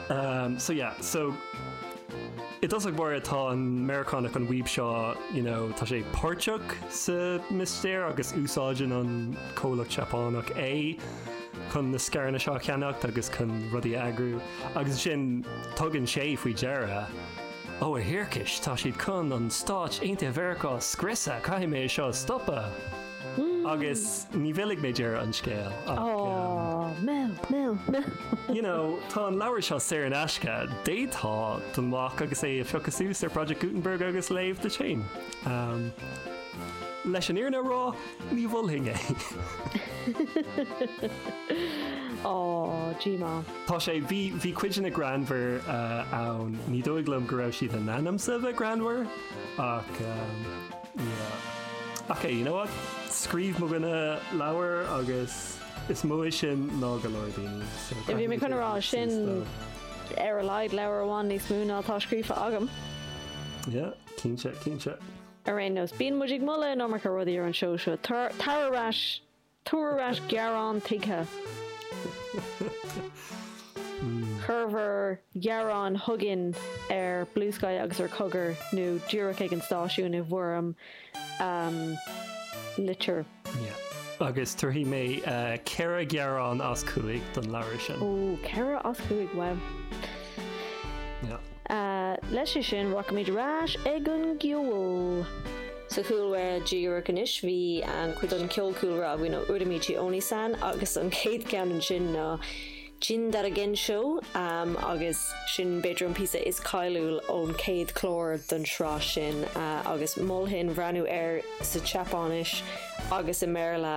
Umm so yeah so i dtosach mar atá an Meiriceánach an weeb seo you know tá sé páirteach sa mistéir agus úsáideann an comhlacht Seapánach é chun na scaireanna seo a cheannacht agus chun rudaí a eagrú agus ansin tugann sé faoi deara oh a thiarcais tá siad chun na Stáit Aontaithe Mheiriceá a scriosadh caithfidh mé é seo a stopadh. Agus ní mhillfidh mé deireadh an scéil ach, mill, mill, mill. you know, tá an leabhar seo saor in aisce, d'fhéadfá dul amach agus é a phiocadh suas ar Project Gutenberg agus é a léamh duit féin. Umm, leis an fhírinne a rá, ní mholfainn é. Aww, GMA. Tá sé, bhí, bhí codanna greannmhara ann, ní dóigh liom go raibh siad in ainm is a bheith greannmhar, ach, umm. Yeah. Ok, you know what? Scríobh mo dhuine leabhar agus is mó é sin ná go leor daoine, so Yeah, bhí mé chun a rá, sin ar a laghad leabhar amháin níos mó ná atá scríofa agam. Yeah, cinnte, cinnte. Ar aon nós, bíonn muid ag moladh an iomarca rudaí ar an seó seo, tabhair ar ais Tabhair ar ais gearán tuigthe. Cuir bhur ngearáin chugainn ar Bluesky agus ar Chogar nó díreach ag an stáisiún i bhfoirm litir. Yeah. Agus tabharfaidh mé ceithre ghearán as cúig don leabhar sin. Ó, ceithre as cúig, wow. Yeah. Leis sin, rachaimid ar ais chuig an gceol. Sa chúlra díreach anois bhí cuid den cheol cúlra againn ó Uramichi Onisan agus an chéad cheann ansin ná Jindarogenshou agus sin b'fhéidir an píosa is cáiliúil ón chéad chlár den sraith sin agus mholfainn breathnú air sa tSeapáinis agus i mBéarla.